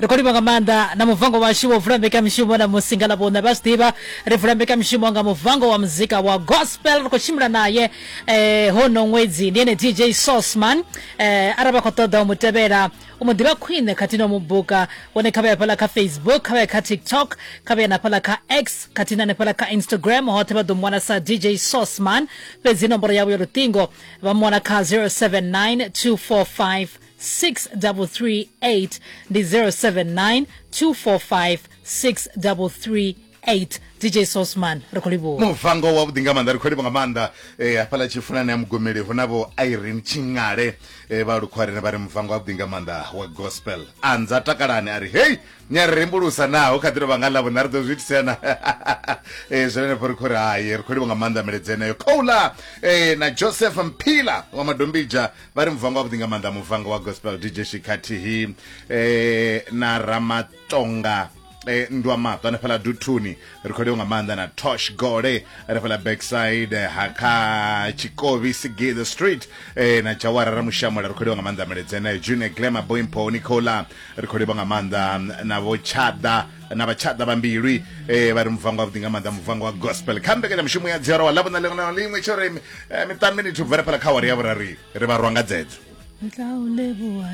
ri khou livha nga maanḓa na muvango washu wo vula mbekamishumo na musi nga ḽavhuṋe vha zwi ḓivha ri vula mbekamishumo nga muvango wa muzika wa gospel ri khou tshimbila naye eh, hono ṅwedzi ndi ene dj sosman eh, arali vha khou ṱoḓa u mu tevhela u mu ḓivha khwine khathihi na u mu buka wone kha vha ya fhaḽa kha facebook kha vha ya kha tiktok kha vha ya na fhaḽa kha x khathihi na hanefhaḽa kha instagram hoṱhe vha ḓo mu wana sa dj sosman fhedzi nomboro yavho ya luṱingo vha mu wana kha 079 245 6338 ndi 079 245 6338 dj sosman ri khou livhuwa muvango wavhuḓi nga maanḓa ri khou livha nga maanḓa eh, hafhaḽa tshifunani ya mugomeli hu navho irene tshiṅale eh, vha lukhwarene vha ri muvango wavhuḓi nga maanḓa wa gospel anza takalani a ri hei ni a ri rembulusa naho kha ḓi tovha nga ḽavho na ri ḓo zwi itisena Eh, zwi renefho ri khou ri haye ri khou livha nga maanḓa miledzi eneyo khoula eh, na joseph mphila wa madombija vha ri muvhango wavhuḓi nga maanḓa muvhango wa gospel dj shi khathihi um eh, na ramatonga eh, ndwa maṱo hanefhala duthuni ri khou leo nga maanḓa na tosh gole hanefhala backside eh, ha kha tshikovi sigi the street eh, na jawara ra mushamola ri khou leo nga maanḓa meledzeneyo june glama boimpo nicola ri khou leo nga maanḓa na vho tshada na vhatshaḓa vha mbilwi eh, vha ri muvhango wavhuḓi nga maanḓa muvhango wa gospel kha mbekanyamushumo ya dziora wa ḽavhona ḽiṅwe na ḽiṅwe tsho ri eh, miṱanu minithu bvela fhala kha wari ya vhurari ri vha rwa nga dzedzo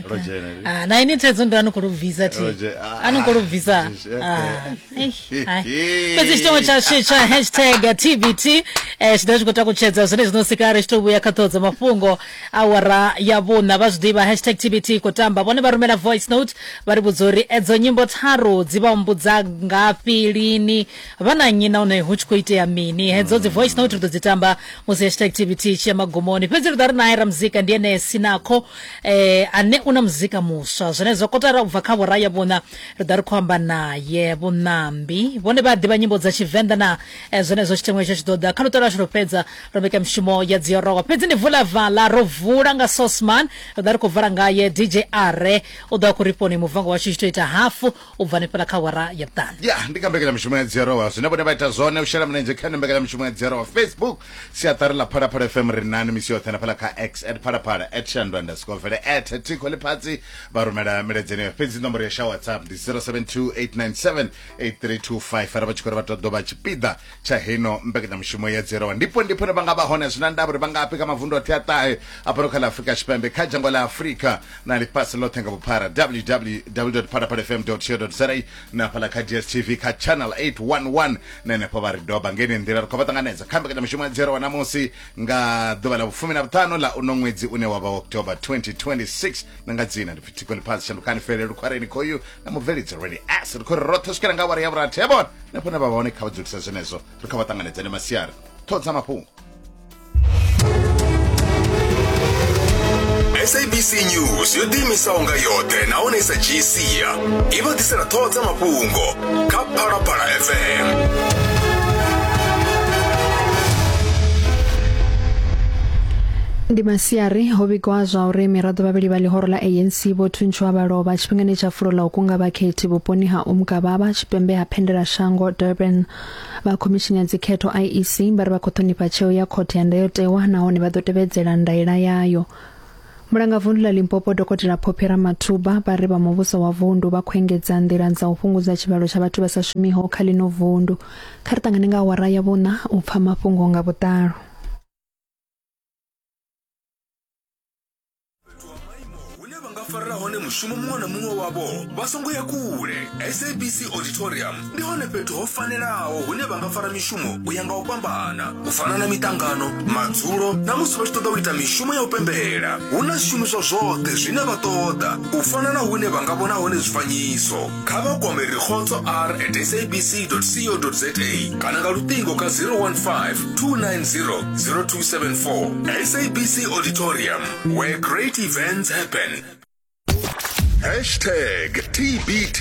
Roger, Ah, na ini thaidzo ndo anokho lubvisa thi Roger, ah, anokho lubvisa eh, Ah, eh, eish, hai. eh. fhedzi tshitongo tsha tsha- tsha hashtag tbt eh, tshi dovha tshi khou takutshedza zwine zwino sikari tshi to vhuya kha ṱhoho dza mafhungo Awara ya vhuṋa vha zwiḓivha hashtag TBT i khou tamba. Vhone vha rumela voice note vha ri vhudza uri edzo nyimbo tharu dzi vha humbudza ngafhi, lini, vha na nnyi nahone hu tshi khou itea mini. Hedzo dzi voice note ri ḓo dzi tamba musi hashtag TBT i tshi ya magumoni. Fhedzi ri ḓo vha ri nae ramuzika ndi ene Sinakho eh, ane u na muzika muswa. Zwenezwo kotara u bva kha awara ya vhuṋa ri ḓa ri khou amba naye. Vhuṋambi vhone vha a ḓivha nyimbo dza Tshivenḓa naa? Eh, zwenezwo tshiteṅwa itsho tshi ḓo ḓa kha luṱa lwashu lwo fhedza. ro vheka mishumo ya dziorowa fhedzi ni vula vala ro vula nga sosman ri ḓa ri khou vala ngaye dj are u ḓo a khou ri fhoni muvango washu tshi to ita hafu u bva ni fhela kha wara ya vhuṱanu ya ndi kha mbekanyamishumo ya dziorowa zwine vhone vha ita zwone u shela mulenzhe kha ino mbekanyamishumo ya dziorowa facebook siaṱari ḽa phalaphala fm ri nani misi yoṱhe na fhala kha x at phalaphala at shandu underscore vele at tikho ḽifhatsi vha rumela miledzeni yo fhedzi nomboro ya sha whatsapp ndi 0728978325 ara vha tshi khou ri vha ṱoḓo vha tshipiḓa tsha heno mbekanyamushumo ya dzero ndipo ndipo vha nga vha hone zwi na ndavha uri vha ngafhi kha mavundu oṱhe a ṱahe a fhano kha ḽa afurika tshipembe kha dzhango ḽa afurika na ḽifhasi ḽoṱhe nga vhuphara www phalaphala fm co za na fhala kha dstv kha channel 811 na henefho vha ri doba ngeni nḓila ri khou vha ṱanganedza kha mbekanyamushumo ya dzero wa namusi nga ḓuvha ḽa vhufumi na vhuṱanu ḽa uno ṅwedzi une wa vha october 2026 na nga dzina ndi pfi thiko ḽifhasi shandukani fele lukhwareni khoyu na mubvelidzi rally s ri khou ri roṱhe swikela nga awara ya vhurathi ya vhona na fhone vha vha hone kha vha dzulisa zwenezwo ri kha vha ṱanganedzane masiari ṱhoho dza mafhungo sabc news yo ḓiimisaho nga yoṱhe nahone i sa dzhii sia i vha ḓisela ṱhoho dza mafhungo kha phalaphala fm ndi masiari ho vhigwa zwa uri miraḓo vhavhili vha ḽihoro ḽa anc vho thuntshiwa vha lovha Tshifhingani tsha fulo ḽa u kunga vhakhethi vhuponi ha Umgababa tshipembe ha Phendela Shango Durban vha khomishini ya dzikhetho IEC vha ri vha khou ṱhonifha tsheo ya khothe ya ndayotewa nahone vha ḓo tevhedzela ndaela yayo. Mulangavundu ḽa Limpopo dokotela Phophi Ramathuba vha ri vha muvhuso wa vundu vha khou engedza nḓila dza u fhungudza tshivhalo tsha vhathu vha sa shumiho kha ḽino vundu. Kha ri ṱangane nga awara ya vhuṋa u pfa mafhungo nga vhuḓalo. fhethu ha maimo hune vha nga farela hone mushumo muṅwe na muṅwe wavho vha songo ya kule sabc auditorium ndi hone fhethu ho fanelaho hune vha nga fara mishumo u ya nga u fhambana u fana na miṱangano madzulo na musi vha tshi ṱoḓa u ita mishumo ya u pembela hu na zwishumiswa zwoṱhe zwine vha ṱoḓa u fana na hune vha nga vhona hone zwifanyiso kha vha kwame rikgotso r at sabc co za kana nga luṱingo kha 015 290 0274 sabc auditorium where great events happen hashtag tbt